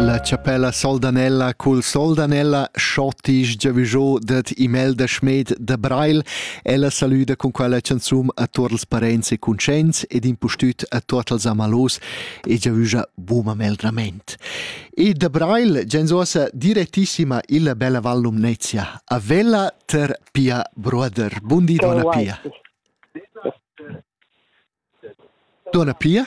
La chapella Soldanella cul Soldanella schottisch giavüschò dad Imelda Schmed da Breil. Ella salüda cun quella chanzun a tuot els parents e cuntscients ed impustüt a tuot els amalos e giavüscha buma meldrament. E da Breil gens uossa direttissima illa bella Val Lumnezia a Vella ter Pia Bruder. Bundi, donna Pia. Donna Pia?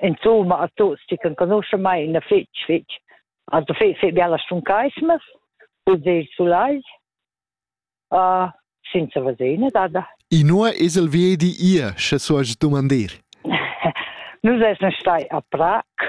insomma a tuts chi canconuscha mai na fitch fitch also fe fe biala stun keismes und de sulai uh, senza vasena dada inua esel vedi ihr sche so as dumandir nus esn stai a prag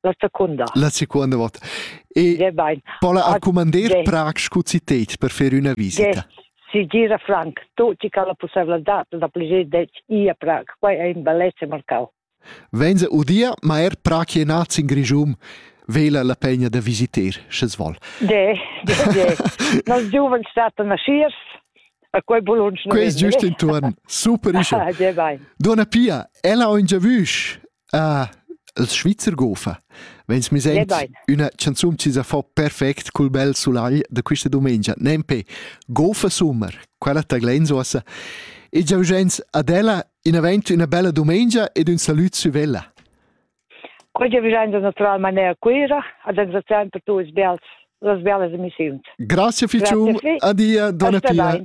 la secunda. La seconda volta. E pola a commander Prag scu citet per fer üna visita. Si gira Frank, tutti che la possibilità da pligir det i a Prag, quai è in bellezza marcau. Venza udia, ma er Prag è nat in Grigium, vela la pegna da visiter, sche vol. De, de, de. Nos giovens statan nasciers, a quei bolunsch. Quei è giusto intorno. Super isce. Ah, Donna Pia, ella ho in giavüsch. Ah, els Svizzer gofa. Vegns mi sent üna chanzun chi sa fa perfect cul bel sulagl da quista dumengia. Nempe, gofa summer, quella ta glens ossa. E giau gens ad ella in avent üna bella dumengia ed ün salut sü vella. Oggi vi gens natural manera Cuira, ad engraziar per tuos bels, las belas emissiuns. Grazie Ficium, adia, dona Pia.